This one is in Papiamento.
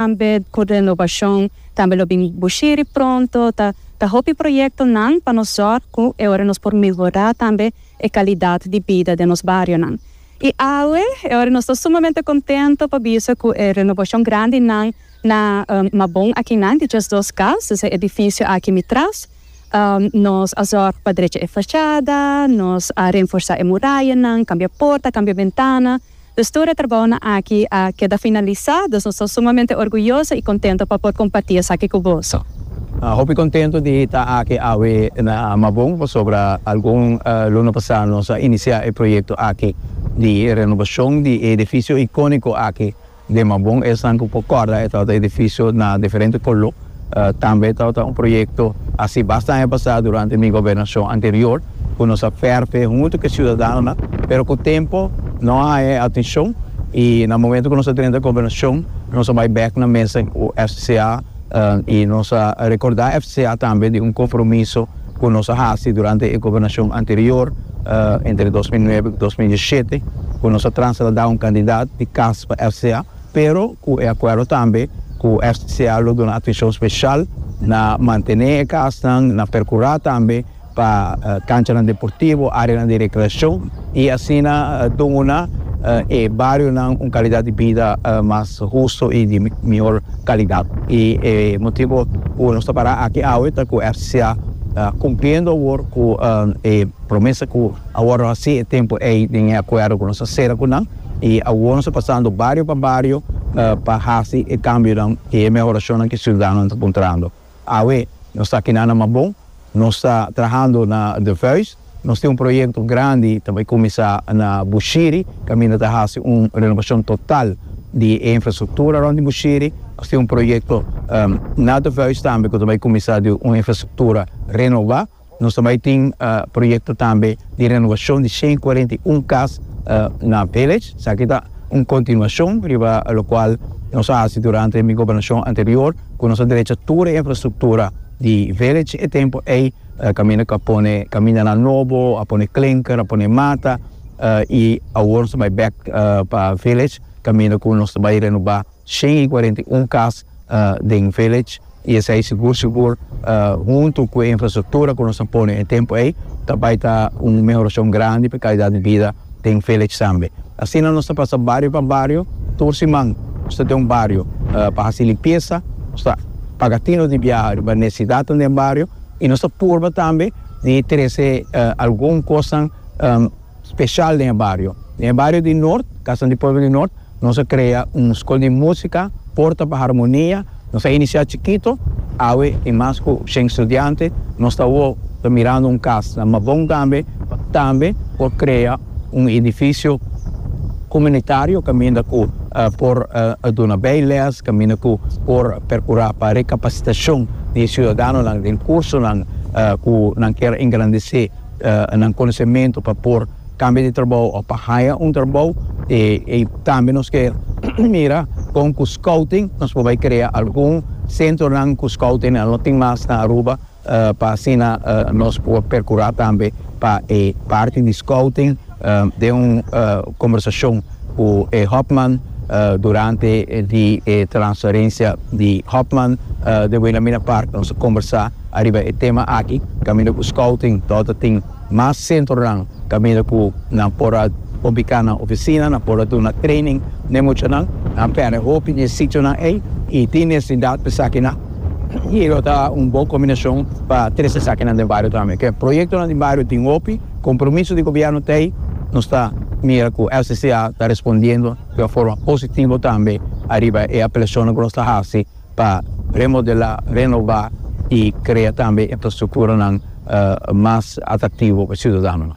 Tambe tur den Novashon tambe lo bin bushiri pronto. Ta ta hopi proyektonan pa nos zòrg ku e ora nos por mehorá tambe e kalidat di bida den nos barionan. I awe e ora nos ta sumamente kontento pa bisa ku e renovashon grandinan na Mabon akinan di djes dos kas, dus e edifisio aki mi tras, nos a zòrg pa drecha e fashada, nos a renforsá e murayanan, kambia porta, kambia bentana. Dus tur e trabounan aki a keda finalisá, dus nos ta sumamente orguyoso i kontento pa por kompartí esaki ku boso. Hopi kontento di hita aki awe na Mabon pasobra algun luna pasá nos a inisiá e proyekto aki di renobashon di e edifisio ikóniko aki Den Mabon esnan cu por corda e tabata edificio na diferente color. Tambe e tabata un proyecto haci basta aña pasa durante mi gobernacion anterior cu nos a ferfe hunto cu e ciudadanonan pero cu tempo no a haña e atencion y na momento cu nos a drenta gobernacion nos a bay bek na mesa cu FCCA y nos a recorda FCCA tambe di un compromiso ku nos a hasi durante e gobernashon anterior, entre dos mil nuebe ku dos mil diesisiete, ku nos a transa ta da un kandidat di kas pa RCA, pero ku e akuerdo tambe ku RCA lo duna atishon speshal na mantené e kasnan, na perkurá tambe pa kanchanan deportivo, áreanan di rekreashon. y asina duna e barionan un calidad di bida mas husto y di mihor calidad. Y e motibo cu nos ta para aki awe ta cu FCCA ta cumpliendo awor cu e promesa cu awor nos a haci e tempo ey den e acuerdo cu nos a cera cu nan y awor nos ta pasando bario pa bario pa haci e cambionan y e mehoracionnan cu e ciudadanonan ta puntrando. Awe nos ta kina na Mabon, nos ta trahando na De Vuijs, nos tin un proyekto grandi ta bai kuminsá na Bushiri, kaminda ta hasi un renobashon total di e infrastruktura rònt di Bushiri. Nos tin un proyekto na De Vuijs tambe ku ta bai kuminsá di un infrastruktura renobá. Nos ta bai tin proyekto tambe di renovashon di shen kuarenta i un kas na Village. Esaki ta un kontinuashon riba lokual nos a hasi durante mi gobernashon anterior ku nos a drecha tur e infrastruktura di Village. E tempu ei kaminda ku a pone kamindanan nobo, a pone klinker, a pone mata i awor nos ta bai bèk pa Village kaminda ku nos ta bai renobá. Shen i cuarenta i un cas den Village i esey sigur sigur hunto cu e infrastructura cu nos a pone na e tempo ey ta bay ta un mehoracion grandi pa e calidad di bida den Village tambe. Asina nos ta pasa bario pa bario, tur siman nos ta den un bario pa haci limpiesa, nos ta paga tino di biaha riba necesidadnan den bario i nos ta purba tambe di trece algun cosnan. special den e bario. Den e bario di Noord, Casa di Pueblo di Noord, nos a crea un School di Musica, Porta pa Harmonia, nos a inicia chikito, awe tin mas cu shen studiante, nos ta awor ta mirando un cas na Mabon tambe, pa tambe por crea un edificio comunitario caminda cu por duna bay les, caminda cu por percura pa recapacitacion di e ciudadanonan den cursonan cu nan kier engrandece nan konosementu pa por kambia di trabou òf pa haya un trabou. E ei tambe nos ke mira kon ku skouting nos por bai krea algun sentronan ku skouting a lo tin mas na Aruba pa asina nos por perkurá tambe pa e parti di skouting. Den un kombersashon ku e Hofman durante di e transferensia di Hofman de Wilhelmina Park nos a kombersá ariba e tema aki kaminda ku scouting lo ta tin mas sentronan kaminda ku nan por a ubiká nan ofisina, nan por a duna training n'e muchanan. Nan pèrdè hopi di e sitionan ei i tin necesidad pa esakinan i lo ta un bon kombinashon pa trese esakinan den bario tambe. Proyektonan di bario tin hopi. Compromiso di gobierno ta ey, nos ta mira cu LCCA ta respondiendo di un forma positivo tambe ariba e apelacionnan cu nos ta haci pa remodela, renova y crea tambe infrastructuranan mas atractivo pa e ciudadanonan.